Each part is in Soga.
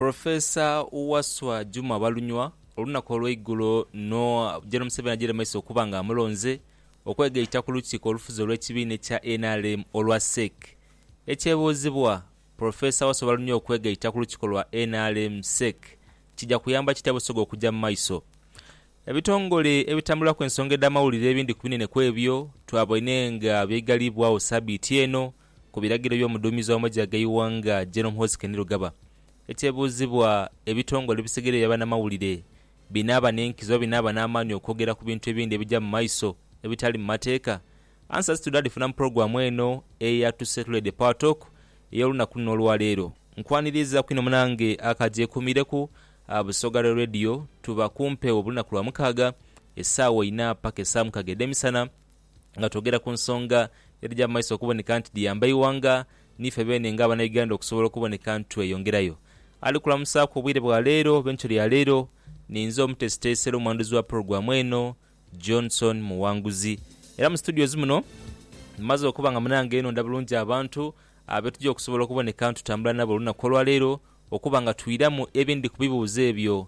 Professor Wasswa Juma Balunywa olunaku olweigulo no Gen Museveni ajeire mumaiso okuba nga amulonze okwegaita ku lukiiko olufuzi olwekibiina ekya nrm olwa Sec. Ekyebuuzibwa, Professor Wasswa Balunywa okwegaita ku lukiiko lwa nrm Sec. Kija kuyamba kitya Busoga okuja mumaiso? Ebitongole ebitambuliraku ensonga edhamawulire ebindhi kubinene kwebyo twabaine nga byaigaliibwagho sabiiti eno ku biragiro eby'omuduumizi wa magye ag'eighanga Gen Muhoozi Kainerugaba. Ekyebuuzibwa, ebitongole ebisigaire ebya banamawulire binaaba n'enkizo oba binaaba n'amaani okwogera ku bintu ebindi ebija mu maiso ebitali mu mateeka? Answers to Dhalifuna mu pulogulaamu eno eya To Settle the Power Talk ey'olunaku luno olwaleero. Nkwaniriizaku inho munange akagyekuumiireku Busoga Rail Radio. Tuba ku mpewo buli lunaku lwa mukaaga esaawa inha paka esaawa mukaaga edh'emisana. nga twogera ku nsonga edhija mu maiso okuboneka nti dhiyamba eighanga niife beene nga Abanauganda okusobola okuboneka nti tweyongerayo. Ali kulamusaaku obwire bwa leero oba enkyo ya leero ni nze omuteesiteesi era omwanduzi wa pulogulaamu eno, Johnson Muwanguzi. Era mu studios muno mmaze okuba nga munange nonda bulungi abantu abetuja okusobola okuboneka nti tutambula nabo olunaku olwaleero okuba nga twiramu ebindhi ku bibuuzo ebyo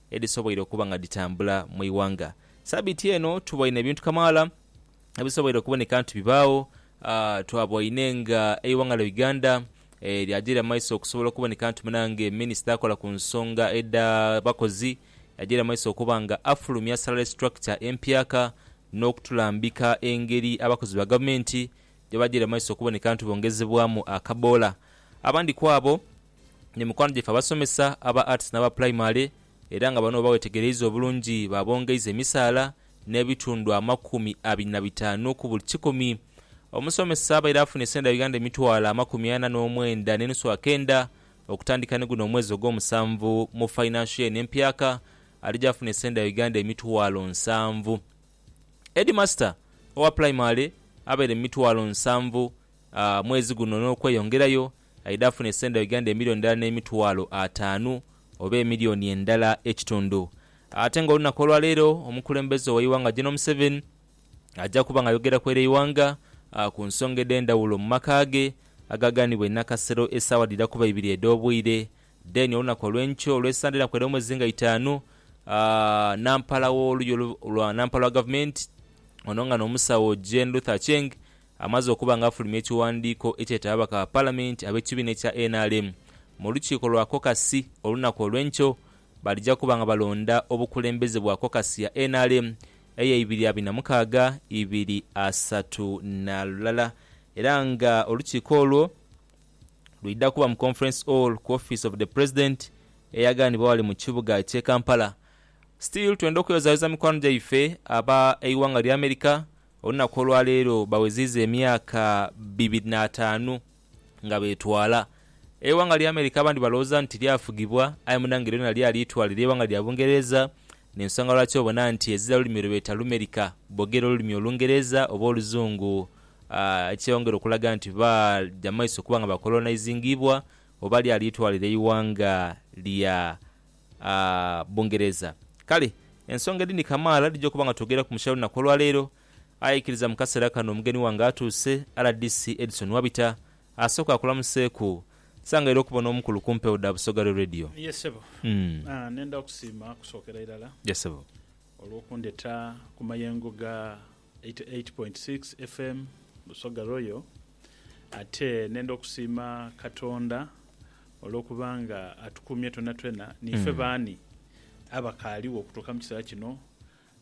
edhisoboire okuba nga dhitambula mu ighanga. Sabiiti eno tuboine ebintu kamaala ebisoboire okuboneka nti bibaagho. Twaboine nga eighanga lya Uganda lyagyiira mu maiso okusobola okuboneka nti munange minisita akola ku nsonga edha bakozi yagyiira mu maiso okuba nga afulumya salary structure empyaka n'okutulambika engeri abakozi ba gavumenti gyebagyiira mu maiso okuboneka nti bongezebwamu akaboola. Abandi kwabo. Ni mikwano gyaife abasomesa aba Arts n'aba Pulayimale era nga bano bwe bawetegereiza obulungi baabongeiza emisaala n'ebitundu amakumi abiri na bitaanu ku buli kikumi. Omusomesa abaire afuna esente dha Uganda emitwalo amakumi ana n'omwenda n'enusu akenda okutandika ni guno omwezi ogwomusanvu mu fainansho yeeno empyaka alija afuna esente dha Uganda emitwalo nsanvu. Heedimasita owa Pulayimale abaire mu mitwalo nsanvu mwezi guno n'okweyongerayo Aidha afune senda Uganda emilioni ndala n'emitwalo ataanu oba emilioni endala ekitundu. Ate nga olunaku olwaleero omukulembeze w'eighanga General Museveni aja kuba nga ayogera kw'ere eighanga ku nsonga edhendhawulo mu maka ge agaganibwa e Nakasero esaawa dhira kuba ibiri edh'obwire. Then olunaku olw'enkyo olwe Sande enaku edh'omu mwezi nga itaanu, Nampala w'oluya lwa Nampala wa gavumenti ono nga n'omusawo Jane Ruth Aceng Amaze okuba nga afulumya ekiwandiiko ekyeta ababaka ba Palamenti ab'ekibiina ekya nrm mu lukiiko lwa kokasi olunaku olw'enkyo, balija kuba nga balonda obukulembeze bwa kokasi ya nrm eya ibiri abiri na mukaaga, ibiri asatu na lulala era nga olukiiko olwo lwidha kuba mu Conference Hall ku office of the President eyaganibwa ghale mu kibuga eky'e Kampala. Still twenda okweyozayoza mikwano gyaife aba eighanga lya America Olunaku olwaleero baweziiza emyaka bibiri n'ataanu nga betwala. Eighanga lya America abandi balowooza nti lyafugibwa aye munange lyona lyali itwale lye ighanga lya Bungereza nensonga lwaki obona nti ezira lulimi lwebeeta Lumerika bogera olulimi Olungereza oba Oluzungu ekyeyongera okulaga nti baja mumaiso okuba nga bakolonaizingiibwa oba lyali itwale lye ighanga lya Bungereza. Kale ensonga edhindi kamaala dhija okuba nga twogera ku mukyala olunaku olwaleero. Aye ikiriza mu kaseera kano omugeni wange atuuse, rdc Edson Wabita asooke akulamuseeku. Nsanghaire okuba n'omukulu ku mpewo dha Busoga Real Radio. Ye ssebo. Nenda kusiima kusookera irala. Ye ssebo. Olw'okundheta ku mayengo ga. 88.6 FM Busoga Royal ate nenda okusiima Katonda olwokuba nga atukuumye twenatwena niife baani abakaaligho okutuuka mu kiseera kino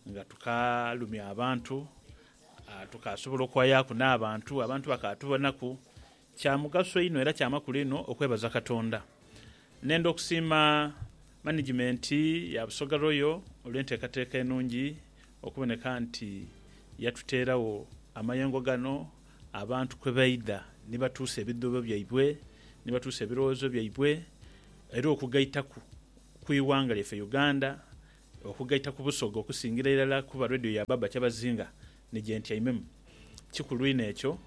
nga tukaalumya abantu, tukaasobola okwayaaku n'abantu, abantu bakaatubonaku Kya mugaso inho era kya makulu inho okwebaza Katonda n'enda okusiima manigimenti ya Busoga Royal olw'enteekateeka enungi okuboneka nti yatuteeragho amayengo gano abantu kwe baidha ni batuusa ebidhuubo byaibwe, ni batuusa ebirowoozo byaibwe era okugaitaku ku ighanga lyaife Uganda Okugaita ku Busoga okusingira irala kuba Radio ya Baaba Kyabazinga ni gye ntyaimemu. Kikulu inho ekyo,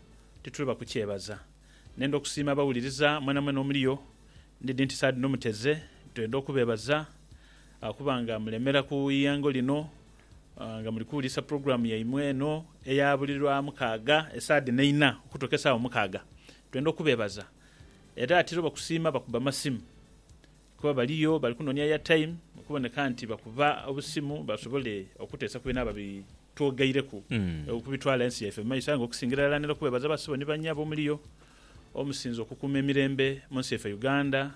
titulema kukyebaza. Nenda okusiima abawuliriza mwenamwena omuli yo. Ndidhi nti saadhi nomuteze twenda okubeebaza okuba nga mulemera ku iyango lino nga muli kuwulisa pulogulaamu yaimwe eno eya buli lwa mukaaga esaadhi neina okutuuka esaawa mukaaga. Twenda okubeebaza era titulema kusiima bakuba masimu Kuba baliyo bali kunonia airtime okuboneka nti bakuba obusimu basobole okutesa ku bino ababi twogaireku okubitwala ensi yaife mu maiso aye nga okusingira irala ntera okwebaza ba sebo ni ba nyabo omuliyo omusinze okukuuma emirembe munsi yaife Uganda,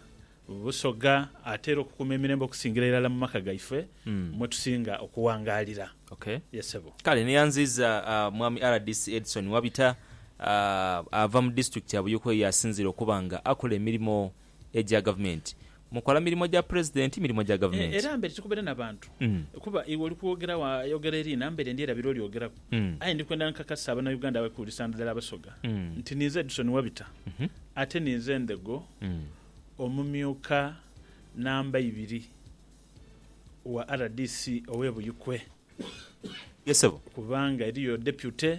Busoga ate era okukuuma emirembe okusingira irala mu maka gaife mwetusinga okuwangalira. Okay. Ye sebo. Kale neyanziiza Mwami rdc Edson Wabita ava mu disitulikiti ya Buyikwe yasinziire okuba nga akola emirimo Egya Gavumenti. Mukola mirimo gya Pulezidenti, mirimo gya Gavumenti. Era mbere tikubeera na bantu, kuba iwe oli kwogeragho ayogera eri na mbere ndi erabira olyogeraku. Aye ndi kwenda nkakase Abanauganda abali kuwulisa nadala Abasoga nti ninze Edson Wabita ate ninze Ndhego omumyuka namba ibiri wa rdc ow'e Buikwe kubanga eriyo Deputy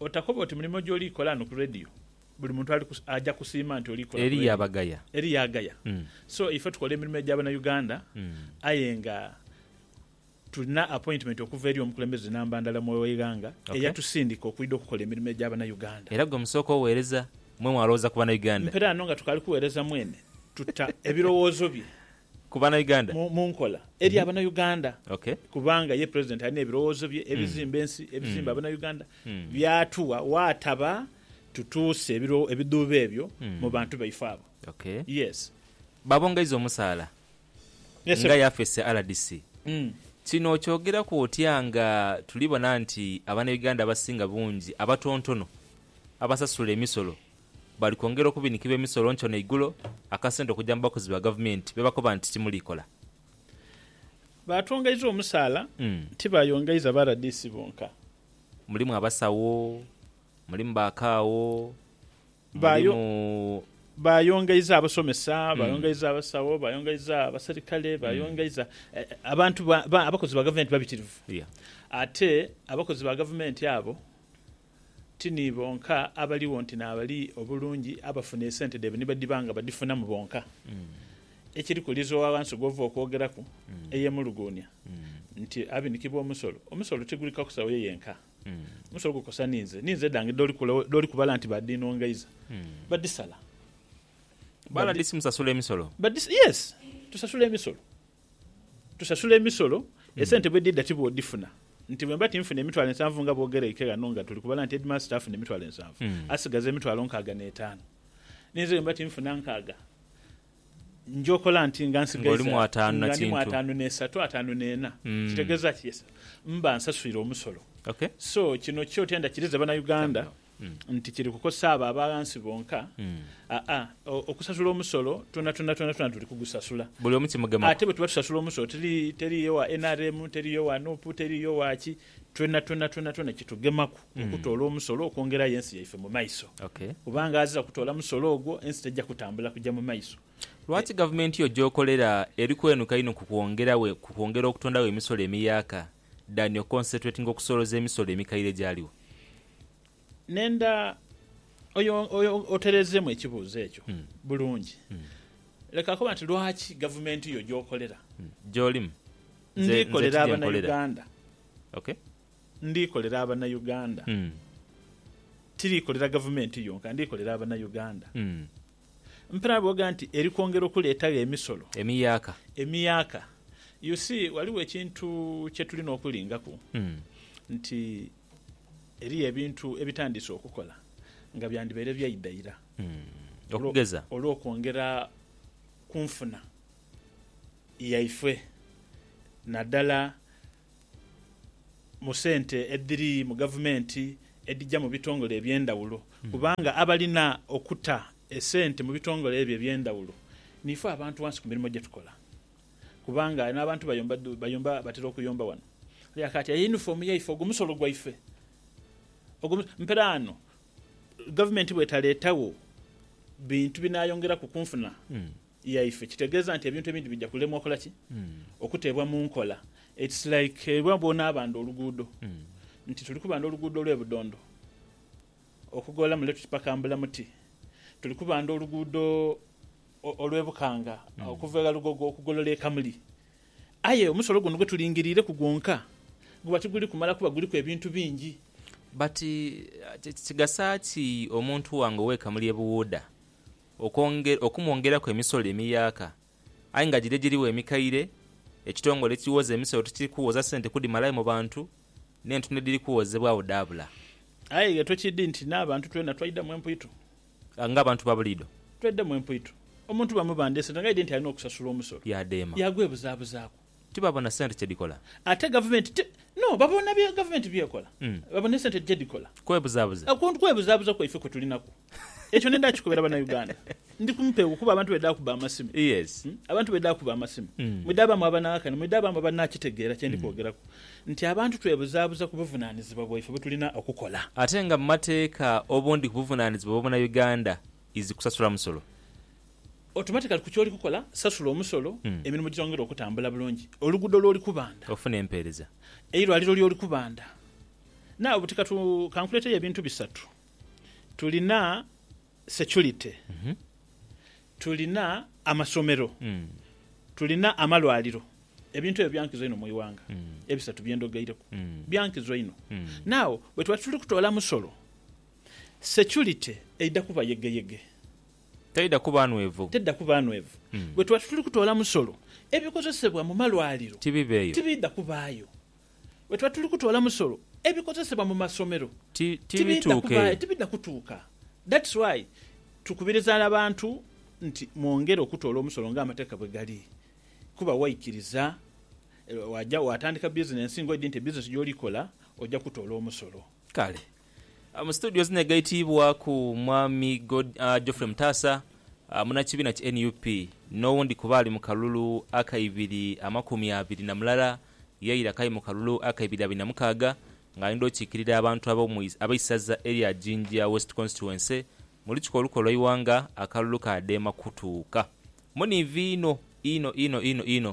Otakoba oti mulimo gy'oli kola ghano ku Radio, buli muntu ali ku, aja kusiima nti oli kola ku radio. Eriyo abagaya. Eriyo agaya. So, ife tukola emirimo egya Banauganda, aye nga tulina appointment okuva eri omukulembeze namba ndala mu eighanga, eya tusindika okwidha okukola emirimo egya Banauganda. Era gwe musooka oweereza, mwe mwalowooza ku Banauganda. Mperaano nga tukaali kuweereza mwene, tuta ebirowoozo bye Ku bana Uganda? Mu nkola eri abana Uganda kubanga ye president alina ebirowoozo bye ebizimba ensi, ebizimba abana Uganda byatuwa waataba tutuuse ebidhuubo ebyo mu bantu baife abo. Yes. Babongeiza omusaala nga yafeesi ya rdc. Kino okyogeraku otya nga tuli bona nti abana Uganda abasinga bungi abatontono abasasula emisolo Bali kwongera okubinikibwa emisolo nkyo n'eigulo, akasente okuja mu bakozi ba gavumenti bebakoba nti timuliikola. Baatwongeiza omusaala, tibaayongeiza ba rdc bonka. Mulimu abasawo, mulimu ba kaawo, mulimu. Baayongeiza abasomesa, baayongeiza abasawo, baayongeiza abaserikale, baayongeiza abantu, abakozi ba gavumenti babitirivu. Ate abakozi ba gavumenti abo. Ti ni bonka abaligho nti n'abali obulungi abafuna esente dhaibwe ni badiba nga badifunamu bonka. Ekiriku Liizi owa ghansi gw'ova okwogeraku eyemuluguunia nti abinikibwa omusolo, omusolo tiguli kakosa oyo yenka. Omusolo gukosa ni nze, ni nze dhange dh'oli kubala nti baadhiinongaiza, badisala. Bala dhi simusasula emisolo? Badisala, yes, tusasula emisolo. Tusasula emisolo, esente bwedhidha ti bwodhifuna. Nti bwemba tinfuna emitwalo ensanvu nga bwogeraike ghano nga tuli kubala nti headmaster afuna emitwalo ensanvu, asigaza emitwalo nkaaga n'etaanu. Ni nze bwemba tinfuna nkaaga, nja okola nti nga nsigaiza, nga ndimu ataanu n'esatu, ataanu n'ena. Kitegeeza ki? Yes. Mba nsaswire omusolo. So, kino kyo tenda kiriza Banauganda nti kiri kukozesa abo aba ghansi bonka, aa, okusasula omusolo twonatwona twonatwona tuli kugusasula. Buli omu kimugemaku. Ate bwe tuba tusasula omusolo teri, teriiyo wa nrm, teriiyo wa nup, teriiyo wa ki, twonatwona twonatwona kitugemaku okutoola omusolo okwongerayo ensi yaife mu maiso. Okay. Kubanga azira kutoola musolo ogwo, ensi teija kutambula kuja mu maiso. Lwaki gavumenti yo gy'okolera eri kwenuka inho ku kwongera we, ku kwongera okutondawo emisolo emiyaaka? Daniel concentrating okusoloza emisolo emikaire egyaligho. Nenda oyo oterezeemu ekibuuzo ekyo bulungi. Leka koba nti lwaki gavumenti yo gy'okolera. Gy'olimu. Nze ndikolera Abanauganda. Okay. Ndikolera Abanauganda. Tirikolera gavumenti yonka, ndikolera Abanauganda. Mpera booga nti eri kwongera okuleetagho emisolo. Emiyaaka. Emiyaaka. You see, ghaligho ekintu kye tulina okulingaku nti eriyo ebintu ebitandiise okukola nga byandibaire byaidha ira Okugeza? olw'okwongera ku nfuna yaifwe naddala. mu sente edhiri mu gavumenti edhija mu bitongole eby'endhawulo kubanga abalina okuta esente mu bitongole ebyo eby'endhawulo niife abantu ghansi ku mirimo gye tukola kubanga n'abantu bayomba batera okuyomba ghano. Aye akaati aye yunifoomu yaife ogwo musolo gwaife ogwo musolo. Mperaano gavumenti bw'etaleetagho bintu binaayongeraku ku nfuna yaife, kitegeeza nti ebintu ebindi bija kulemwa okola ki? Okuteebwa mu nkola. It's like ebwa bw'onaabanda oluguudo, nti tuli kubanda oluguudo olw'e Budondo okugoola mule tuti paka Mbulamuti, tuli kubanda oluguudo olw'e Bukanga okuva e Ghalugogo okugolola e Kamuli. Aye omusolo guno gwe tulingiriireku gwonka guba tiguli kumala kuba guliku ebintu bingi. But kigasa ki omuntu wange ow'e Kamuli e Buwuuda okwongera okumwongeraku emisolo emiyaaka aye nga giri egirigho emikaire, ekitongole ekiwooza emisolo tikiri kuwooza sente kudhimalayo mu bantu n'entundo edhiri kuwoozebwagho dhaabula. Aye ghe tukidhi nti n'abantu twena twaidhamu empwito. Nga abantu ba buliidho. Twaidhamu empwito. Omuntu bamubandha esente ng'aidhi nti alina okusasula omusolo. Yaadheema. Yaagwebuzabuzaaku. Tibabona sente kye dhikola. Ate gavumenti ti. No, babona bye gavumenti by'ekola. Babona esente gye dhikola. Kwebuzaabuza. Kwebuzaabuza kwaife kwe tuli naku. Ekyo ne ndakikobera Bannauganda. Ndi ku mpewo kuba abantu bwedhakuba amasimu. Yes. Abantu bwedhakuba amasimu. Mwidhabamu abanaakana, mwidhabamu abanaakitegeera kye ndi kwogeraku. Nti abantu twebuzaabuza ku buvunaanizibwa bwaife bwe tulina okukola. Ate nga mu mateeka obundi ku buvunaanizibwa bwa Munnauganda is kusasula musolo. Automatically ku ky'oli kukola, sasula omusolo, emirimu gyongere okutambula bulungi, oluguudo lw'oli kubanda, Ofuna empeereza. eirwaliro ly'oli kubanda. Now buti ka tu, ka nkuleeteyo ebintu bisatu. Tulina security, tulina amasomero, tulina amalwaliro. Ebintu ebyo bya nkizo inho mu ighanga, ebisatu bye ndhogeireku. Bya nkizo inho. Now bwe tuba tituli kutoola musolo, security eidha kuba yegeyege. Taidha kuba nhwevu. Taidha kuba nhwevu. Bwe tuba tituli kutoola musolo, ebikozesebwa mu malwaliro tibiidha kubaayo. Bwe tuba tituli kutoola musolo, ebikozesebwa mu masomero tibiidha kubaayo, tibiidha kutuuka. That's why tukubiriza n'abantu nti mwongere okutoola omusolo ng'amateeka bwe gali. Kuba waikiriza, waja waatandika bizinensi ng'oidhi nti ebizinensi gy'oli kola oja kutoola omusolo. Kale Mu situdiyo zino egaitiibwaku Mwami Geoffrey Mutaasa, munnakibiina ki nup n'owundi ku baali mu kalulu akaibiri amakumi abiri na mulala ye ira k'ali mu kalulu akaibiri abiri na mukaaga ng'ali n'okiikirira abantu ab'eisaza erya Jinja West Constituency mu lukiiko olukulu olw'eighanga akalulu k'adema kutuuka muniivi inho inho inho inho inho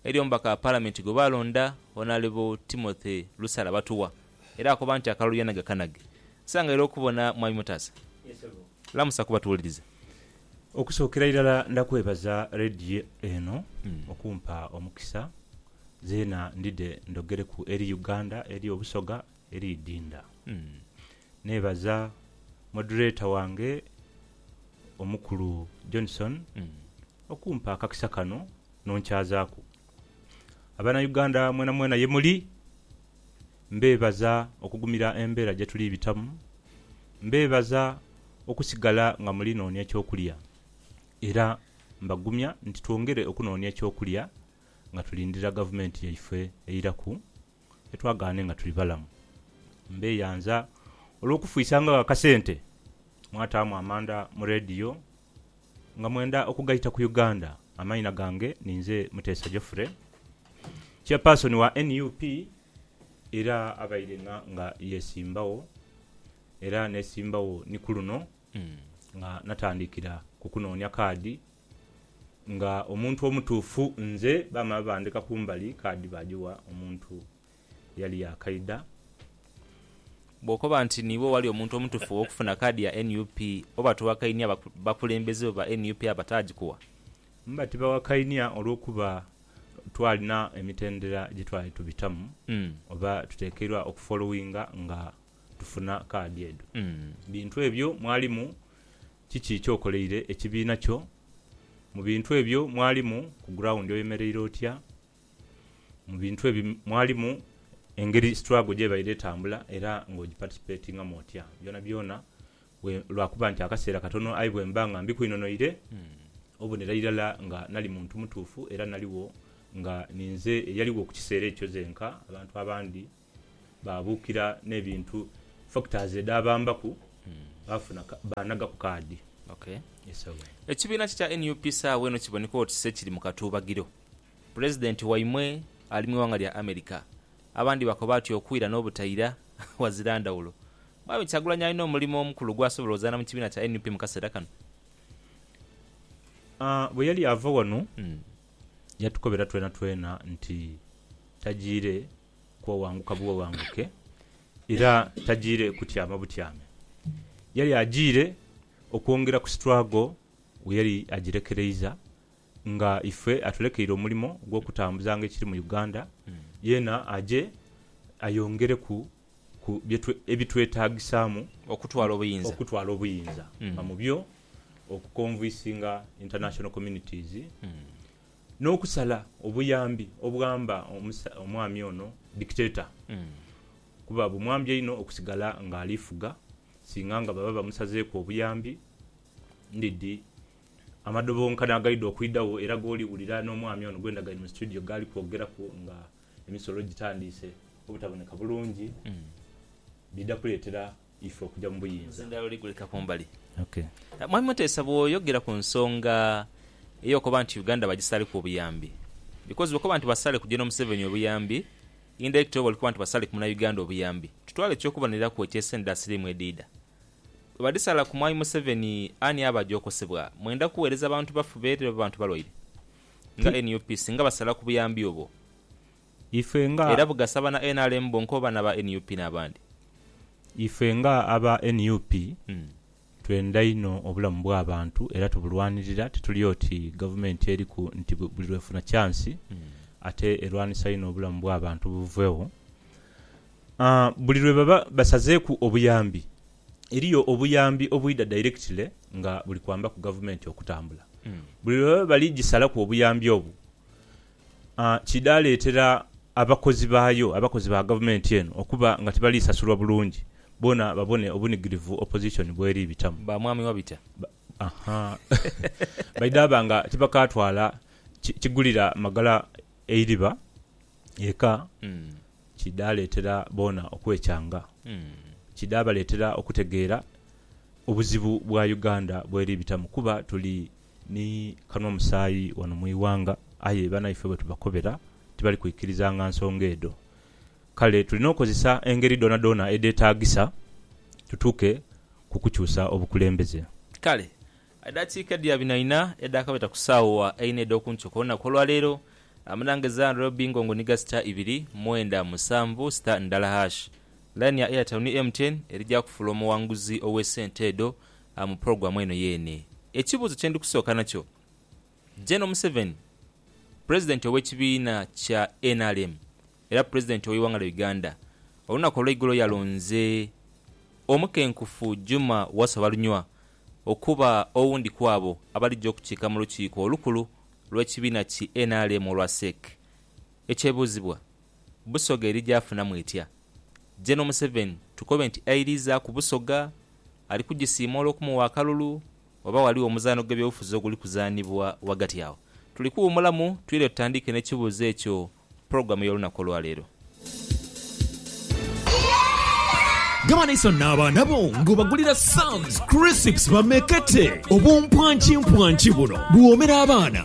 Eri omubaka wa Palamenti gwe baalonda ono ali bu Timothy Lusala Batuwa era akoba nti akalulu yanaga kanage. Nsangaire okubona Mwami Mutaasa. Lamusa ku batuwuliriza. Okusookera irala ndakwebaza Radio eno okumpa omukisa zeena ndidhe ndhogereku eri Uganda eri Obusoga eri Idinda. Neebaza Moderator wange omukulu Johnson okumpa akakisa kano nonkyazaaku. Abana Uganda mwena mwena yemuli mbeebaza okugumira embeera gyetuli bitamu, mbeebaza okusigala nga muli noonia ekyokulya era mbagumya nti twongere okunoonia ekyokulya nga tulindira gavumenti yaife eiraku etwagaane nga tuli balamu. Mbeyanza olwokufwisangagho akasente mwataamu amanda mu leediyo Nga mwenda okugaita ku Uganda, amaina gange ninze Muteesa Geoffrey, Chairperson wa nup era abaire nga yesimbagho era nesimbagho ni kuluno nga natandikira ku kunoonia kaadi nga omuntu omutuufu nze bamala bandheka kumbali kaadi bajiwa omuntu Yali yaakaidha. Bw'okoba nti niiwe wali omuntu omutufu ow'okufuna kaadi ya nup, oba towakainia bakulembeze bo ba nup abataagikuwa? Mba tibawakainia olw'okuba twalina emitendera gye twali tubitamu oba tutekeirwa okufolowinga nga tufuna kaadi edho. Bintu ebyo mwalimu kiki ky'okoleire ekibiina kyo? Mu bintu ebyo mwalimu ku grawundi oyemereire otya? Mu bintu ebyo mwalimu engeri struggle gyebaire etambula era nga ogiparticipatingamu otya. Byonabyona lwakuba nti akaseera katono aye bwemba nga mbikweinonoire obonera irala nga nali muntu mutuufu era naligho nga ninze eyaligho kukiseera ekyo zenka abantu abandi Baabuukira n'ebintu factors edhaabambaku baafuna baanhagaku kaadi. Ok. Yes awe. Ekibiina kye kya nup saagho eno kiboneka oti se kiri mu katuubagiro. Pulezidenti waimwe ali mu ighanga lya America. Abandi bakoba ati okwira n'obutaira ghazira ndhawulo. Mwami Kyagulanyi alina omulimo omukulu gw'asobola ozaana mu kibiina kya nup mu kaseera kano? Bwe yali ava ghano yatukobera twenatwena nti tajiire. ku owanguka buowanguke, era tajiire kutyama butyame. Yali ajiire okwongera ku struggle we yali ajirekereiza nga ife atulekeire omulimo gwokutambuzanga ekiri mu Uganda, yeena aje ayongereku ku ebitwetagisaamu okutwala obuyinza okutwala obuyinza nga mubyo oku convicinga international communities N'okusala obuyambi obwamba omwami ono, Dictator, kuba bumwambya inho okusigala ng'ali fuga singa nga baba bamusazeeku obuyambi ndidhi amadobonkano agaidha okwidhagho era g'oli wulira n'omwami ono gwe ndagaine mu situdiyo gh'ali kwogeraku nga emisolo gitandiise obutaboneka bulungi, bidha kuleetera. ife okuja mu buyinza. Nze ndala oliguleka kumbali. Mwami Muteesa bwoyogera ku nsonga eyokoba nti Uganda bagisaleku obuyambi because bwokoba nti basaleku General Museveni obuyambi indirectly oba olikuba nti basaleku munauganda obuyambi. Tutwale ekyokuboneraku ekye sente dha siriimu edhiidha. Bwebadhisala ku mwami Museveni ani aba aja okosebwa? Mwenda kuwereza bantu baffu beere oba bantu balwaire nga nup singa basala ku buyambi obwo? Ife nga. Era bugasa bana nrm bonka oba naba nup nabandi? Ife nga aba nup twenda inho obulamu bwabantu era tubulwanirira tituli oti gavumenti eriku nti buli lwefuna kyansi ate erwanisa inho obulamu bwabantu buvegho. Buli lwebaba basazeeku obuyambi eriyo obuyambi obwidha directly nga buli kwambaku gavumenti okutambula. Buli lwebaba bali gisalaku obuyambi obwo kidhaleetera abakozi baayo, abakozi ba gavumenti eno okuba nga tibali sasulwa bulungi boona babone obunigirivu opozisoni bweri bitamu. Ba mwami Wabitya. Baidhaba nga tibakaatwala kigulira magala eiriba eka kidhaleetera boona okwekyanga. Kidhabaleetera okutegeera obuzibu bwa Uganda bweri bitamu kuba tuli. Ni kanhwa musaayi ghano mu ighanga, aye banaife bwe tubakobera tibali kwikirizanga nsonga edho. Kale tulina okozesa engeri dhoonadhoona edheetaagisa tutuuke ku kukyusa obukulembeze. Kale edhakiika edhia binaina edhaakabita ku saawa eina edh'oku nkyo ku lunaku olwa leero, amanhanga ezira ndhula lubingo ngo niga sita ibiri, mwenda, musanvu, sita ndala hash. Laini ya Airtel ni MTN eri gya kufuula omughanguzi ow'esente edho. mu pulogulaamu eno yeene. Ekibuuzo kye ndi kusooka nakyo, Gen. Museveni, Pulezidenti ow'ekibiina kya nrm era Pulezidenti ow'eighanga lya Uganda, olunaku olweigulo yalonze omukenkufu Juma Wasswa Balunywa okuba owundi kwabo abalija okukiika mu lukiiko olukulu lw'ekibiina ki nrm olwa CEC. Ekyebuuzibwa, Busoga eri gy'afunamu etya? General Museveni tukobe nti airiizaaku Busoga? Ali kugisiima olw'okumuwa akalulu? Oba ghaligho omuzaano gw'ebyobufuzi oguli kuzaanibwa ghagati agho? Tuli kuwuumulamu twire tutandiike n'ekibuuzo ekyo mu pulogulaamu y'olunaku olwaleero. Gaba n'isanhu n'abaana bo ng'obagulira Sam's Crisps bamekete. Obumpwankimpwanki buno buwoomera abaana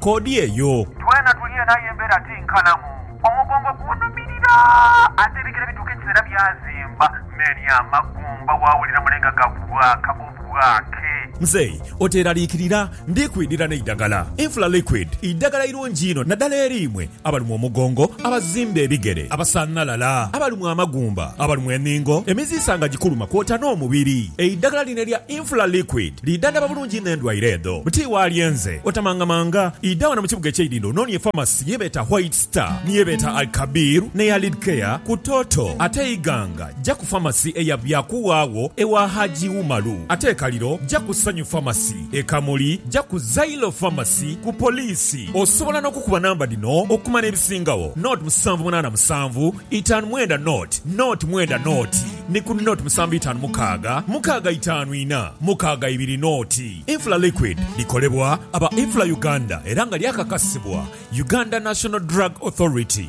koodi eyo. Twena tuli eno aye embeera ti nkalamu. Omugongo gunhumirira ate ebigere bituuka ekiseera byazimba n'eri amagumba waawulira mulenga gabwaaka obwaake. Muzei oteeraliikirira, ndi kwidhira n'eidagala. Infla Liquid idagala irungi inho naddala eri imwe abalumwa omugongo, abazimba ebigere, abasanhalala, abalumwa amagumba, abalumwa enhingo, emiziisa nga gikuluma kwota n'omubiri. Eidhagala lino elya Infla Liquid lidhandhaba bulungi inho endwaire edho. Buti waalyenze, otamangamanga, idha wano mu kibuga eky'eidhindho ononie famasi ye beeta White Star, ni ye beeta Al-Kabir n'eya Lidcare ku Toto. Ate Iganga, ja ku famasi eya Byakuwaagho ewa Haji Umaru. Ate e Kaliro, ja ku Sanyu Famasi. E Kamuli ja ku Zailo Pharmacy ku poliisi. Osobola n'okukuba namba dhino okumanya ebisingagho, nought musanvu munaana musanvu itaanu mwenda nought nought mwenda nought ni ku nought musanvu itaanu mukaaga mukaaga itaanu ina mukaaga ibiri nought. Infla Liquid likolebwa aba Infla Uganda era nga lyakakasibwa Uganda National Drug Authority.